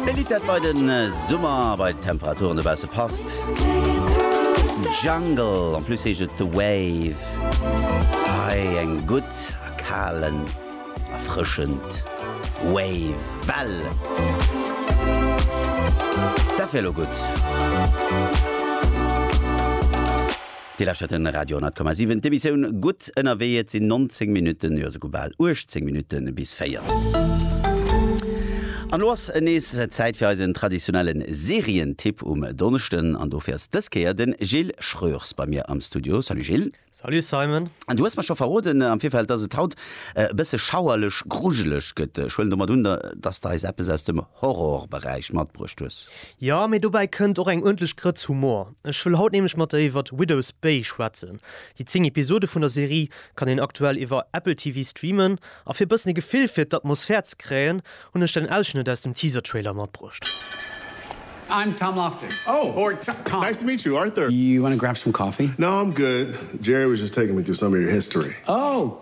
E Lidd dat bei den Summer a bei d'Temperaturen dobausse passt. Jungle, en plus heescht et The Wave. Hei eng gutt a kalen, erfrëschend Wave, Well. Dat wär lo gutt. Dir lauschtert de Radio 10,7, d'Emissioun Gutt ënnerwee. Et sinn 19 Minutten, jo souguer bal 18 Minutte bis 4. An elo ass nees Zäit fir eisen traditionellen Serientipp um Donneschden. An dofir ass dës Kéier de Gilles Schreurs bei mir am Studio. Salut Gilles. Salut Simon. An du hues mer scho verroden am Virfeld, dass et haut e bësse schauerlech, grujeleg gëtt. Ech huelen domat un, dass de eis eppes aus dem Horrorberäich matbruecht hues. Jo, mee dobäi kënnt och eng uerdentlech Grëtz Humor. Ech wëll haut nämlech mat der iwwert Widow's Bay schwätzen. Déi 10 Episode vun der Serie kann een aktuell iwwer Apple TV streamen, a fir e bëssen e Gefill fir d'Atmosphär ze kréien, hunn ech den Ausschnëtt aus dem Teaser-Trailer matbruecht. I'm Tom Loftus. Oh, or Tom. Nice to meet you, Arthur. You wanna grab some coffee? No, I'm good. Jerry was just taking me through some of your history. Oh!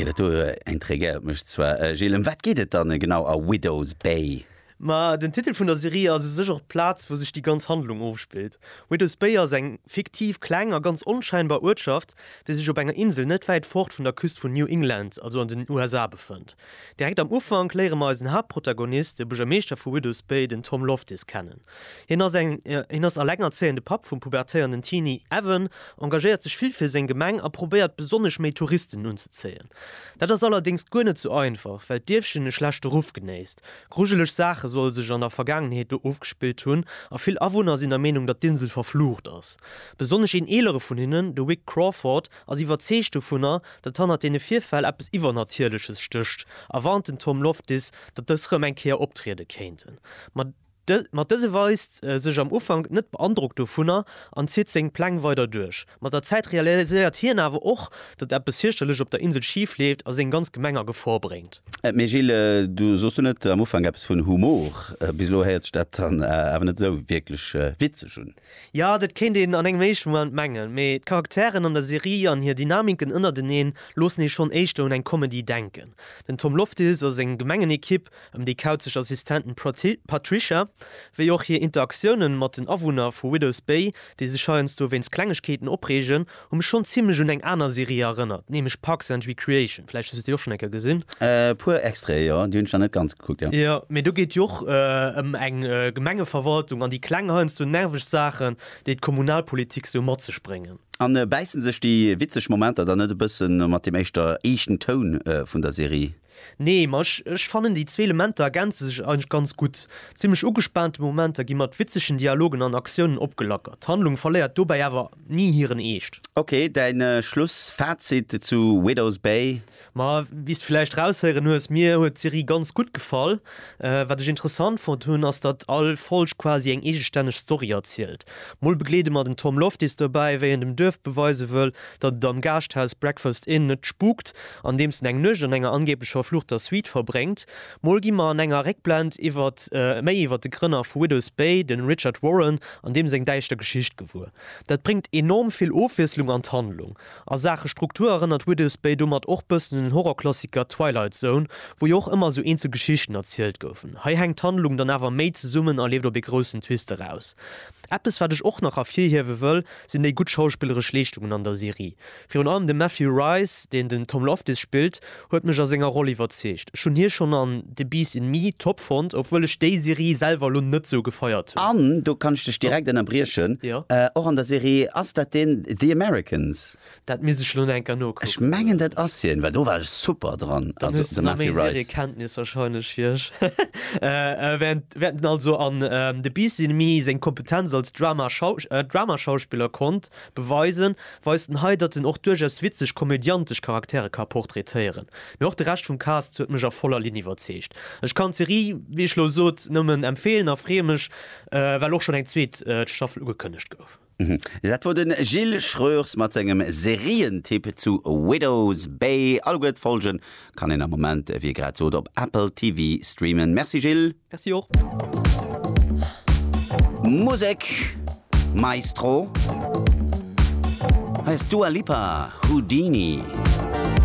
Okay, dat do intriguéiert mech zwar. Äh, Gilles, ëm wat geet et dann genau a Widow's Bay? Ma den Titel vun der Serie ass u sech och d'Plaz, wou sech déi ganz Handlung ofspillt. Widow's Bay ass eng fiktiv, kleng a ganz onscheinbar Uertschaft, déi sech op enger Insel net wäit fort vun der Küst vun New England, also an den USA, befënnt. Direkt am Ufank léiere mer eisen Haaptprotagonist, de Buergermeeschter vu Widows Bay, den Tom Loftis, kennen. Hien ass elengerzéiende Papp vum pubertéierenden Teenie Evan, engagéiert sech vill fir seng Gemeng a probéiert besonnesch méi Touristen unzezéien. Dat ass allerdéngs guer net sou einfach, well d'Dierfchen e schlechte Ruff genéisst. Grujeleg Saache solle sech an der Vergaangenheet do ofgespillt hunn a vill Awunner sinn der Meenung, datt d'Insel verflucht ass. Besonnesch een eelere vun hinnen, de Wick Crawford, ass iwwerzeegt dovunner, datt hannert deene Virfäll eppes Iwwernatierleches stécht a warnt den Tom Loftis, datt dës rëm eng Kéier optriede kéinten. Ma dëse weist sech am Ufank net beandrockt dovunner an zitt seng Pläng weider duerch. Mat der Zäit realiséiert hien awer och, datt eppes fierchterlech op der Insel schif leeft a seng ganz Gemeng a Gefor bréngt. Mee Gilles, du sos duerno am Ufank eppes vun Humor. Bis elo héiert sech dat dann awer net esou wierklech witzeg un. Jo, dat kéint een an engem éischte Moment mengen, mee d'Charakteren an der Serie an hir Dynamiken ënnerteneen loossen ee schonn éischter un eng Comedy denken. Den Tom Loftis a seng gemengen Ekipp ëm déi kauzeg Assistentin Patricia, wéi och hir Interaktiounen mat den Awunner vu Widows Bay, déi sech heiansdo wéinst Klengegkeeten opreegen, Hu mech schonn zimlech un eng aner Serie erënnert, nämlech Parks and Recreation. Vläicht hues du déi och schonn eng Kéier gesinn? E puer Extraite, jo. Déi hunn ech nach net ganz gekuckt, jo. Jo, mee do geet et jo och ëm eng Gemengeverwaltung an déi kleng heiansdo nerveg Saachen, déi d'Kommunalpolitik sou mat sech bréngen. A bäissen sech déi witzeg Momenter dann net e bëssen mat deem éischter eeschten Toun vun der Serie? Nee, ma ech ech fannen déi zwee Elementer ergänze sech eigentlech ganz gutt. Zimmlech ugespaante Momenter gi mat witzegen Dialogen an Aktiounen opgelackert. D'Handlung verléiert dobäi awer ni hiren Eescht. Ok, däin Schlussfazit zu Widow's Bay? Ma wéi s de villäicht raushéieren hues, mir huet d'Serie ganz gutt gefall. Wat ech interessant fonnt hunn, ass datt all Folg quasi eng eegestänneg Story erzielt. Mol begleede mer den Tom Loftis dobäi, wéi en dem Duerf beweise wëll, datt et am Gaaschthaus Breakfast Inn net spukt, andeems en eng Nuecht an enger angeeblech verfluchter Suite verbréngt. Mol gi mer an enger Réckblend iwwert méi iwwert de Grënner vu Widows Bay, de Richard Warren, an deem seng däischter Geschicht gewuer. Dat bréngt enorm vill Ofwiesslung an d'Handlung. A Saache Struktur erënnert Widow's Bay domat och bëssen un den Horrorklassiker Twilight Zone, wou jo och ëmmer esou eenzel Geschichten erzielt goufen. Hei hänkt d'Handlung dann awer méi zesummen a leeft op ee groussen Twist eraus. Eppes wat ech och nach ervirhiewe wëll, sinn déi gutt schauspilleresch Leeschtungen an der Serie. Virun allem de Matthew Rhys, deen den Tom Loftus spillt, huet mech a senger Roll iwwerzeegt. Ech hunn hie schonn an The Beast in Me top fonnt, obwuel ech déi Serie selwer elo net sou gefeiert hunn. An, do kann ech dech direkt ënnerbriechen, och an der Serie, ass dat deen The Americans? Dat misst ech elo nach eng Kéier nokucken. Ech mengen dat ass hien, well do war e super dran, also de Matthew Rhys. Kenntnis wahrscheinlech fir ech wäerten den also an The Beast in Me seng Kompetenz als Drama Dramaschauspiller konnt. Beweisen, weist en hei, datt en och duerchaus witzeg, komödiantesch Charaktere ka portraitéieren. Mee och de Rescht vum Cast huet mech a voller Linn iwwerzeegt. Ech kann d'Serie, wéi ech lo sot, nëmmen empfeelen a freeë mech, well och schonn eng zweet Staffel ugekënnegt gouf. Dat wor de Gilles Schreurs mat sengem Serientipp zu Widow's Bay. Alleguer d'Folgen kann een am Moment, wéi e grad sot, op Apple TV streamen. Merci Gilles. Merci och. Musek Maestro. Hei ass Dua Lipa, Houdini.